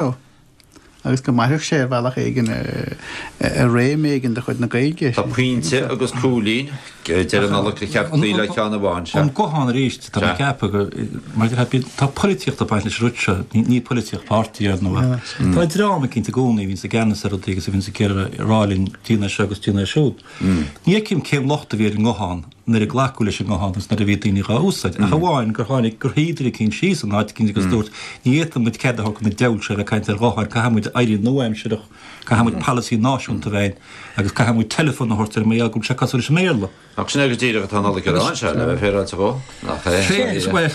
Ó, agus go mairfeadh sé ar bhealach éigin ar réim éigin de chuid na Gaeilge. Tá pointe agus cúilín a deir Nollaig, ba cheart cloí le ceann amháin. An guthán arís, tá mé ag ceapadh gur, mar a deir thú, tá polaitíocht ag baint leis an rud seo, ní polaitíocht páirtí ar ndóigh ach tá dream eicínt i gcónaí a bhíonns i gceannas ar rudaí agus a bhíonns ag iarraidh a rá linn, 'Déan é seo agus déan é siúd'. Ní fheicim cén locht a bhí ar an nguthán nuair a glacadh leis an nguthán agus nuair a bhí daoine dhá úsáid, ach amháin gur tháinig, gur shuigh duine eicínt síos in áit éigin agus dúirt, ní fhéadfaidh muid cead a thabhairt do na deabhail seo a bheith ag caint ar ghutháin, caithfidh muid éirí nua-aimsireach, caithfidh muid polasaí náisiúnta a bheith againn agus caithfidh muid teileafón a thabhairt air mar gheall go bhfuil sé cosúil leis an mBéarla. Ach sin é go díreach atá Nollaig a rá, Seán, a bheith féaráilte dhó, nach é? Sea, is bhuel,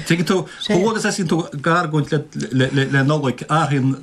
tuigeann tú, chomh luath agus a thosaíonn tú ag argóint le Nollaig, athraíonn.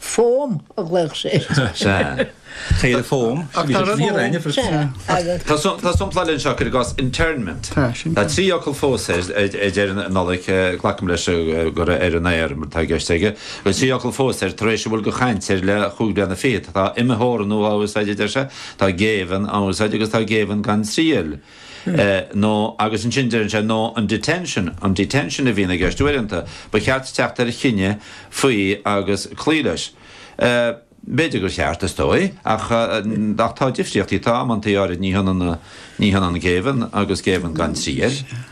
Fón a ghlaodh sé air. Sea. Caora fón. Ach tá rud. Sea. Tá sompla eile anseo, cuir i gcás internment. Tá, sin. Tá trí fhocal fós air, a deir Nollaig, glacaim leis gur ar an aer atá i gceist aige, tá trí fhocal fós air tar éis a bhfuil de chaint air le chúig bliana fichead. Tá imtheorannú á úsáid, a deir sé, tá géibheann á úsáid agus tá géibheann gan triail. Nó, agus ansin deireann sé, nó, an detention, an detention a bhíonn i gceist uaireanta, ba cheart teacht ar chinneadh faoi agus cloí leis. B'fhéidir gur cheart, is dóigh, ach tá difríochtaí, tá amanntaí áirid ní hionann, ní hionann géibheann agus géibheann gan triail.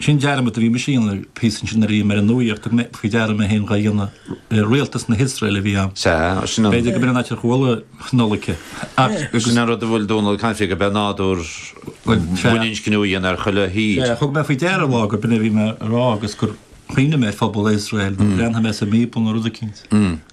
Sin dearmad a bhí mise a dhéanamh le píosa ansin nuair a bhí mé ar an nuaíocht, thug mé faoi deara mé féin dhá dhéanamh ar rialtas na hIosraeile a bhí ann. Sea, sin an. B'fhéidir go b'in an áit ar chuala Nollaig ach. Sin an rud a bhfuil Dónall ag caint faoi, go b'é an nádúr baininscniú a dhéanamh ar chuile thír. Sea, thug mé faoi deara lá gur b'in a bhí mé a rá agus gur chuimhnigh mé ar phobal Iosraeil nó bhreathnaigh mé sa mBíobla nó rud eicínt.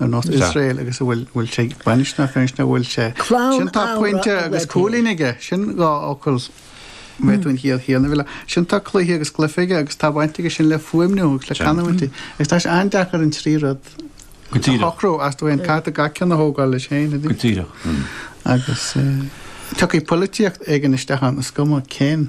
Nó nó Iosrael agus a bhfuil bhfuil sé ag baint na féin na bhfuil sé. Clann Sin tá amhra pointe a agus bhfuil cúilín aige. Sin dhá fhocal mé tú an chiall chéanna bhfuil. Sin tá cluiche agus cluife aige agus tá baint aige sin le fuaimniú agus le Tá. canúintí. Agus tá sé an-deacair an trí rud Go a díreach. shocrú is dóigh liom caithfear gach ceann a thógáil leis féin. a Go dtí. díreach. agus eh, tiocfaidh polaitíocht éigin isteach ann is cuma cén.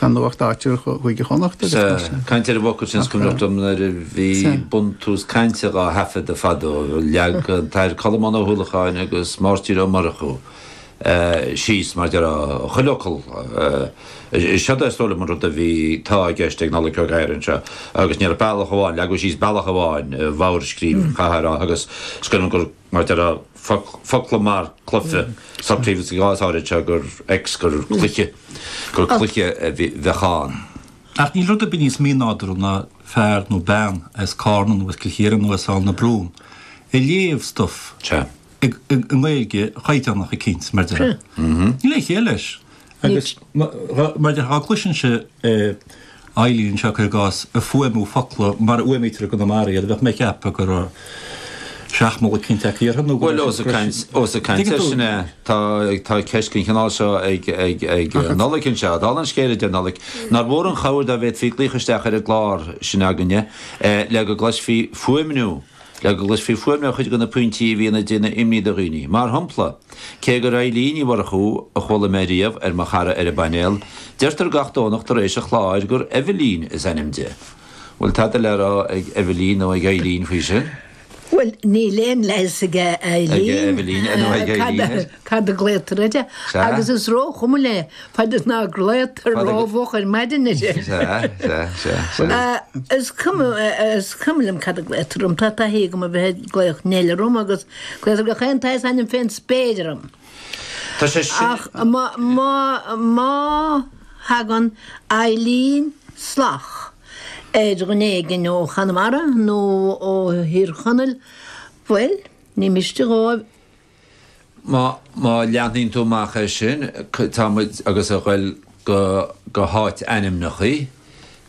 Canúint áitiúil Chúige Chonnacht agus mar sin de. Ag caint ar an bhfocal sin, is cuimhneach liom nuair a bhí buntús cainte dhá thaifeadadh fadó, leag an tAthair Colmán Ó hUallacháin agus Máirtín Ó Murchú síos mar a déarfá chuile fhocal, seod é is dóigh liom an rud a bhí, tá, i gceist ag Nollaig Ó Gadhra anseo, agus ní raibh bealach amháin, leagadh síos bealach amháin, i bhfogharscríobh an chathair, agus is cuimhin liom go, mar a déarfá. focla mar cluife, socraíodh sa gcás áirid seo gur X, gur cluiche, gur cluiche a bheadh ann. Ach níl rud ar bith níos mínádúrtha ná fear nó bean as Carna nó as Cill Chiaráin nó as Aill na Brún ag léamh stuif i nGaeilge chaighdeánach eicínt, mar a déarfá. Níl aon chiall leis. Agus mar dá gcloisinnse Eilín seo cuir i gcás ag fuaimniú focla mar a fhuaimnítear i gConamara iad bheadh mé ag ceapadh go raibh seachmall eicínt tagtha uirthi nó go raibh siad breise. Bhuel ós ag caint air sin é tá tá ceist den chineál seo ag ag ag Nollaig anseo. Dála an scéil a deir Nollaig nár mhór an chabhair dá bhféadfaí glaoch isteach ar an gclár sin againne le go gcloisfí fuaimniú. Le go gcloisfí fuaimniú cuid de na pointí a bhíonn ag déanamh imní do dhaoine. Mar shompla, cé gur Eilín Ní Mhurchú a chuala mé riamh ar mo chara ar an bpainéal, deirtear gach Domhnach tar éis an chláir gur Eibhlín is ainm di. Bhfuil tada le rá ag Eibhlín nó ag Eilín faoi sin? Bhuel, níl aon leigheas ag Eilín ar Cad a glaotar uirthi. Sea. Agus is róchuma léi, fad is ná glaotar Fad a- rómhoch ar maidin í. Sea, sea, sea, sea. Ah, Is cuma eh, is cuma liom cad a glaotar orm, tá taithí agam a bheith ag glaoch Neil orm agus glaotar gach aon tsaghas ainm fén spéir orm. Tá sé sin. Ach má, má, má thagann Eilín salach ar dhuine éigin ó Chonamara nó ó Thír Chonaill, bhuel, ní miste dhóibh Má leanann tú amach é sin, tá muid agus ag goil go háitainmneachaí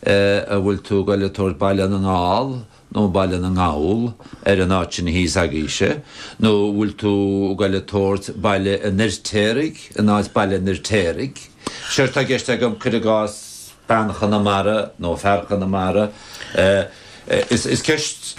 an bhfuil tú ag goil ag tabhairt Baile na nGall nó Baile na nGall ar an áit sin thíos agaibhse, nó an bhfuil tú ag goil ag tabhairt Baile an Fhirtéaraigh in áit Baile an Fhirtéaraigh. Seo atá i gceist agam, cuir i gcás bean Chonamara nó fear Chonamara. Is ceist.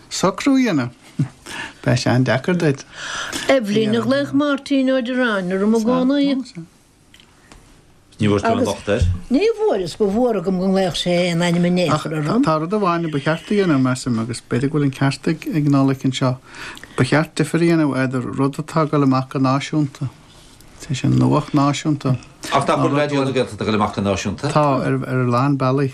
Socrú a dhéanamh. Beidh sé an-deacair duit. Eibhlín a ghlaodh Máirtín Ó Direáin orm i gcónaí. Ní bhfuair tú aon locht air? Ní bhfuair, is ba mhór agam go nglaodh sé aon ainm in aon chor orm. Tá rud amháin a ba cheart a dhéanamh, measaim, agus b'fhéidir go bhfuil an ceart ag Nollaig anseo, ba cheart difear a dhéanamh idir rud atá ag dul amach go náisiúnta, is é sin, nuacht náisiúnta, Ach nach bhfuil Raidió na Gaeltachta ag dul amach go náisiúnta? Tá, ar a lán bealaí.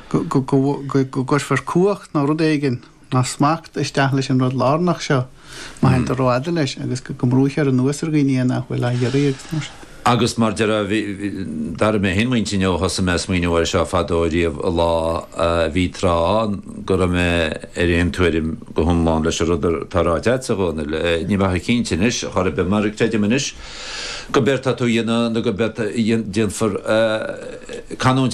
go gcuirfear cumhacht nó rud éigin, nó smacht, isteach leis an rud lárnach seo, má théann tú rófhada leis, agus go mbrúithear anuas ar dhaoine é nach bhfuil á iarraidh agus mar sin. Agus mar a déarfá, bhí, d'athraigh mé fhéin m'intinn ó thosaigh mé a' smaoineamh air seo fadó riamh an lá, bhí tráth ann go raibh mé ar aon tuairim go hiomlán leis an rud atá ráite a'dsa, a Dhónaill, níl mé chomh cinnte anois chor ar bith mar creidim anois gurb éard atá tú a dhéanamh nó gurb éard a déanfar canúint eile